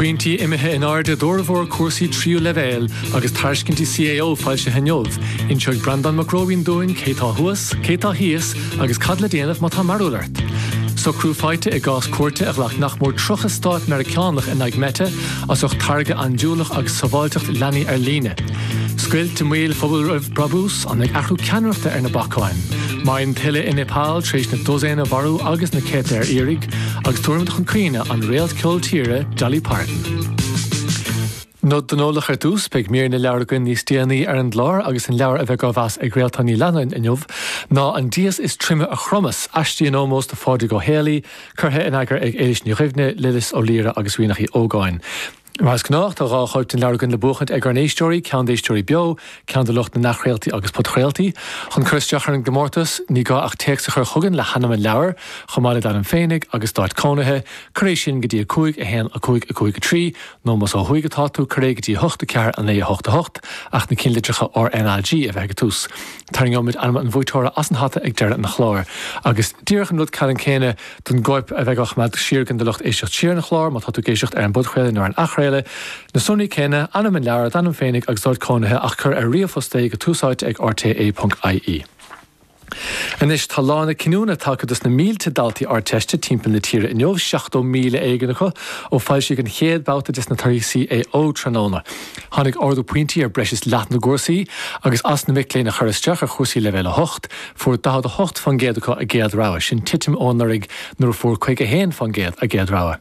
Pointí imithe in airde d'fhormhór cúrsaí tríú leibhéal agus tairiscintí CAO foilsithe inniu. Inseoidh Breandán Mac Róibín dúinn cé tá thuas, cé tá thíos agus cad le déanamh má tá mearbhall ort. Socrú faighte i gcás cúirte a ghlac nach mór 30 stát Meiriceánach in aghaidh Meta as ucht táirge andúileach agus sábháilteacht leanaí ar líne. Scoilt i mbaol Phobal Roimh Brabús? Tháinig athrú ceannaireachta ar na bacáin. Maidhm thuile i Nepal tar éis na dosaein a mharú agus na céadta ar iarraidh, agus tabharfaimid chun cuimhne an réalt ceol tíre Dolly Parton. Nod don eolach ar dtús, beidh mír na leabhar againn níos déanaí ar an gclár agus an leabhar a bheidh á mheas ag Réaltán Ní Leannáin inniu ná An dias is troime a chromas, aistí in ómós do Phádraig Ó Héalaí, curtha in eagar ag Éilís Ní Dhuibhne, Lillis Ó Laoire agus Ríonach Uí Ógáin. Mar is gnách, tá dhá chóip den leabhar againn le buachaint ag ár n-éisteoirí, ceann d'éisteoirí beo, ceann do lucht na n-athchraoltaí agus podchraoltaí. Chun cur isteach ar an gcomórtas, ní gá ach téacs a chur chugainn le hainm an leabhair, chomh maith le d'ainm féinig agus d'áit cónaithe. Cuir é sin go dtí 5 1 5 5 3, nó, más ó thuaidh atá tú, cuir é go dtí 8 4 9 8 8, ach na cinnlitreacha R N A G a bheith ag an tús. Tarraingeoimid ainm an bhuaiteora as an hata ag deireadh an chláir. Agus díreach an rud ceannann céanna, don gcóip a bheidh á choimeád siar againn do lucht éisteacht siar an chláir, má tá tú ag éisteacht ar an bpodchraoladh nó ar an athchraoladh, na sonraí céanna, ainm an leabhair, d'ainm féinig agus d'áit cónaithe, ach cuir ar ríomhphost é go túsáite ag rte.ie. Anois tá lá na cinniúna tagtha dos na mílte daltaí Ardteiste timpeall na tíre inniu, 70,000 éigin acu, ó foilsíodh an chéad bhabhta des na torthaí CAO tráthnóna. Tháinig ardú pointí ar breis is leath na gcúrsaí, agus as na mic léinn a chuir isteach ar chúrsaí Leibhéal 8, Fuair 48 fán gcéad acu a gcéad rogha, sin titim ó anuraidh nuair a fuair 51 fán gcéad a gcéad rogha.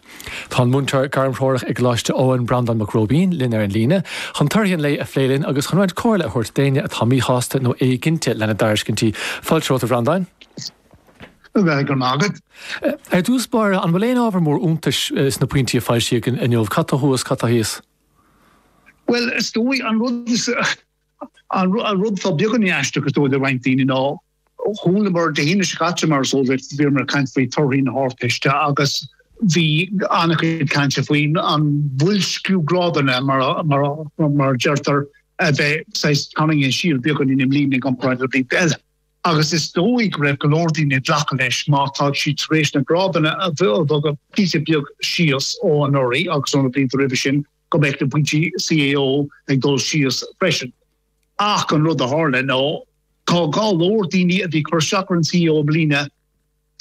Tá an múinteoir gairmthreorach i gColáiste Eoin, Breandán Mac Róibín, linn ar an líne chun torthaí an lae a phlé linn agus chun roinnt comhairle a thabhairt d'éinne atá míshásta nó éiginnte lena dtairiscintí. Fáilte romhat, a Bhreandáin. Go raibh maith agat. Ar dtús báire, an bhfuil aon ábhar mór iontais sna pointí a foilsíodh inniu? Cad tá thuas, cad tá thíos? Bhuel, is dóigh, an rud is, An rud atá beagáinín aisteach is dóigh le roinnt daoine ná, chualamar Dé hAoine seo caite mar is eol duit, bhíomar ag caint faoi torthaí na hArdteiste agus bhí an-chuid cainte faoin an bhoilsciú grádanna, mar a deirtear, a bheith saghas tarraingthe siar beagáinín i mbliana i gcomparáid le blianta eile. Agus is dóigh go raibh go leor daoine ag glacadh leis má tá siad tar éis na grádanna a bhogadh píosa beag síos ó anuraidh agus ó na blianta roimhe sin, go mbeadh na pointí CAO ag dul síos freisin. Ach an rud a tharla ná tá go leor daoine a bhí ag cur isteach ar an CAO i mbliana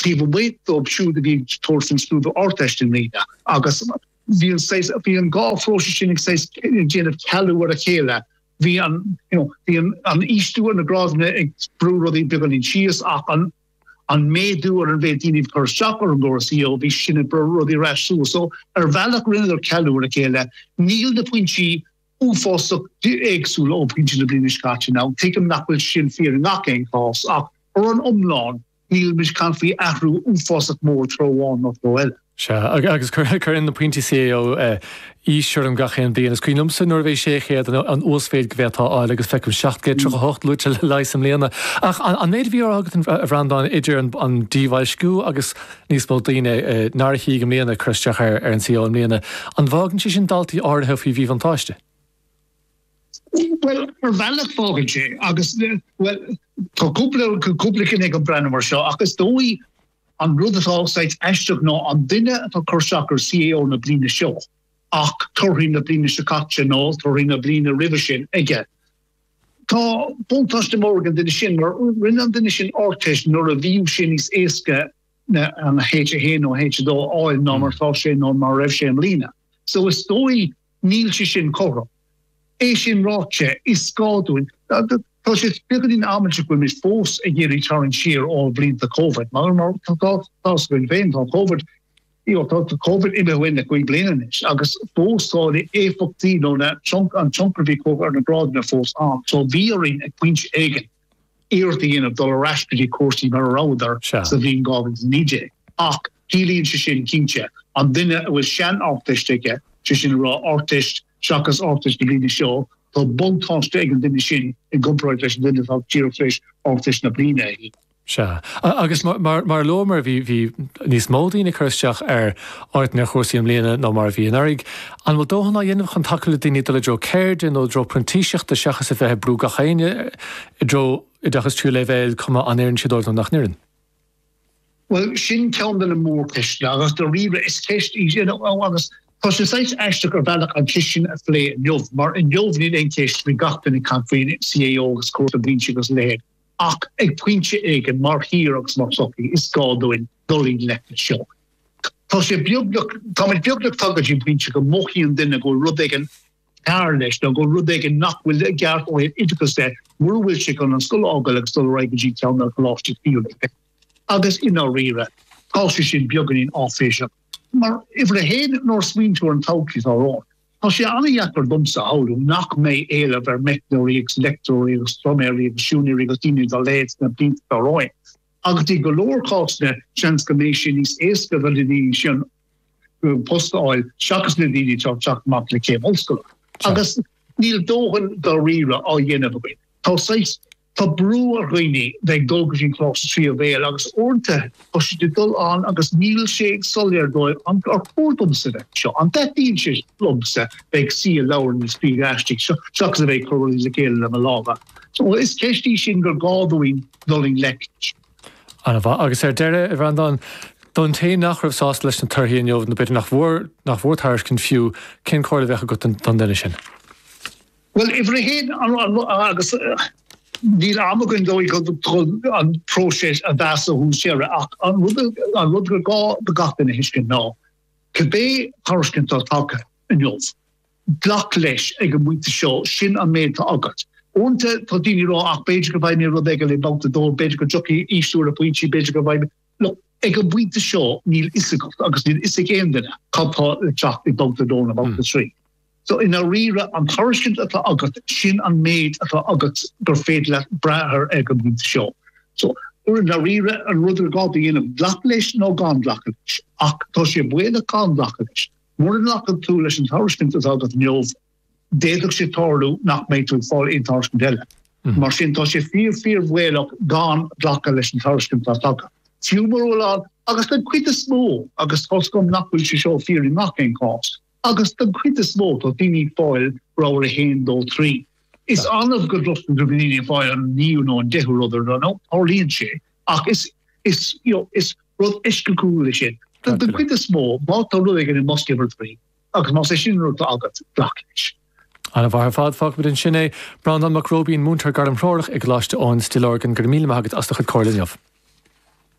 taobh amuigh dóibh siúd a bhí ag tabhairt faoin scrúdú Ardteist i mbliana agus bhí an saghas, bhí an dhá phróiseas sin ag saghas ag déanamh cealú ar a chéile. Bhí an, you know, bhí an, an ísliú ar na grádanna ag brú rudaí beagáinín síos ach an, an méadú ar an mhéid daoine ag cur isteach ar an gcóras CAO, bhí sin ag brú rudaí ar ais suas. So, ar bhealach rinneadar cealú ar a chéile. Níl na pointí uafásach éagsúla ó pointí na bliana seo caite ann. Tuigim nach bhfuil sin fíor i ngach aon chás ach, ar an iomlán, nílimid ag caint faoi athrú uafásach mór treo amháin nó treo eile. Sea, agus cuireann na pointí CAO aois orm gach aon bhliain. Is cuimhin liomsa nuair a bhí 600 an uasmhéid go bhféadfá a fháil, agus feicim 738 luaite le leigheas i mbliana. Ach an méid a bhí á rá agat, a Bhreandáin, idir an díbhoilsciú agus níos mó daoine nár shuigh an i mbliana ag cur isteach ar an CAO i mbliana, an bhfágann sé sin daltaí áirithe faoi mhíbhuntáiste? Bhuel, ar bhealach fágann sé, agus, bhuel, tá cúpla, cúpla cinn ag an breathnú mar seo, ach is dóigh An rud atá saghas aisteach ná an duine atá cur isteach ar CAO na bliana seo ach torthaí na bliana seo caite nó torthaí na bliana roimhe sin aige. Tá buntáiste mór ag an duine sin mar rinne an duine sin Ardteist nuair a bhíodh sé níos éasca an H1 nó H2 a fháil ná mar atá sé nó mar a raibh sé i mbliana. So is dóigh Níl sé sin cothrom. É sin ráite, is gá dúinn, tá sé beagáinín amaideach go bhfuil muid fós ag iarraidh tarraingt siar ó bhlianta Covid, mar tá tá's againn féin, tá Covid, you know, tá Covid imithe uainn le cúig bliana anois agus fós tá na éifeachtaí nó na trunc an tionchar a bhí ar na grádanna fós ann. So bhí orainn ag pointe éigin iarracht a dhéanamh dul ar ais go dtí cúrsaí mar a rabhadar sa bhliain 2019. Ach ciallaíonn sé sin, cinnte, an duine a bhfuil sean-Ardteist aige, sé sin le rá Ardteist seachas Ardteist na bliana seo, tá buntáiste ag an duine sin i gcomparáid leis an duine atá díreach tar éis Ardteist na bliana a shuí. Sea. Agus mar a luamar, bhí níos mó daoine ag cur isteach ar áiteanna ar chúrsaí i mbliana ná mar a bhí anuraidh. An bhfuil dóthain á dhéanamh chun tacú le daoine dul i dtreo ceirde nó i dtreo printíseachta seachas a bheith ag brú gach éinne i dtreo oideachas tríú leibhéil, cuma an oireann sé dóibh nó nach n-oireann? Bhuel, sin ceann de na mórcheisteanna agus daríre is ceist í sin agus tá sé saghas aisteach ar bhealach an cheist sin a phlé inniu mar inniu níl aon cheist faoi gach duine ag caint faoi CAO agus cúrsaí, pointí agus a leithéid. Ach ag pointe éigin, mar thír agus mar shochaí, is gá dúinn dul i ngleic leis seo. Tá sé beagnach, táimid beagnach tagtha go dtí an pointe go mothaíonn duine go bhfuil rud éigin cearr leis, nó go bhfuil rud éigin nach bhfuil i gceart ó thaobh oideachais de, mura bhfuil sé chun an scoil a fhágáil agus dul ar aghaidh go dtí ceann de na coláistí tríú leibhéal. Agus i ndáiríre, tá sé sin beagáinín áiféiseach. Mar uimhir a haon, nuair a smaoiníonn tú ar an todhchaí atá romhainn, Tá sé an-dheacair domsa a shamhlú nach mbeidh éileamh ar mheicneoirí agus leictreoirí agus pluiméirí agus siúinéirí agus daoine dá leithéid sna blianta atá romhainn. Agus i go leor cásanna, seans go mbeidh sé níos éasca do na daoine sin post a fháil seachas na daoine atá ag teacht amach le céim ollscoile. Agus níl dóthain dáiríre á dhéanamh againn. Tá saghas Tá brú ar dhaoine bheith ag dul go dtí an Coláiste tríú leibhéal agus uaireanta tá siad ag dul ann agus níl sé soiléir dóibh an ar chóir domsa bheith anseo, an dtaitníonn sé liomsa bheith ag suí i leabharlann ag scríobh aistí seachas a bheith ag cur rudaí le chéile le mo lámha. So is ceist í sin gur gá dúinn dul i ngleic leis. Ana mhaith. Agus ar deireadh, a Bhreandáin, don té nach raibh sásta leis na torthaí inniu nó b'fhéidir nach bhfuair tairiscint fiú, cén comhairle a bheadh agat don duine sin? Bhuel, uimhir a haon, agus níl am againn dóigh chun an próiseas a mheas ó thús deireadh, ach an rud gur gá do gach duine a thuiscint ná cibé tairiscint atá tagtha inniu, glac leis ag an bpointe seo, sin an méid atá agat. Uaireanta tá daoine ag rá, ach b'fhéidir go bhfaighidh mé rud éigin i mbabhta a dó, b'fhéidir go dtiocfaidh ísliú ar na pointí, b'fhéidir go bhfaighidh mé. Look, ag an bpointe seo níl fhios agat, agus níl fhios ag aon duine, cad tá le teacht i mbabhta a dó nó babhta a trí. So, i ndáiríre, an tairiscint atá agat, sin an méid atá agat gur féidir leat brath air ag an bpointe seo. So, i ndáiríre, an rud ar gá a dhéanamh, glacadh leis nó gan glacadh leis. Ach tá sé baolach gan glacadh leis. Mura nglacann tú leis an tairiscint atá agat inniu, d'fhéadfadh sé tarlú nach mbeidh tú ag fáil aon tairiscint eile. Mar sin, tá sé fíor fíor bhaolach gan glacadh leis an tairiscint atá tagtha. Fiú mura bhfuil ann agus den chuid is mó agus tá's agam nach bhfuil sé seo fíor i ngach aon chás agus den chuid is mó tá daoine ag fáil rogha a haon dó trí. Is annamh go gcloistear daoine ag fáil an naoú nó an deichiú rud ar ndóigh tarlaíonn sé ach is is you know is rud eisceachtúil é sin. Den chuid is mó má tá rud éigin i mbosca uimhir trí, Agus más é sin an rud atá agat, glac leis. Ana mhaith ar fad, fágfaimid ansin é. Breandán Mac Róibín, Múinteoir Gairmthreorach i gColáiste Eoin, Stillorgan, go raibh míle maith agat as do chuid comhairle inniu.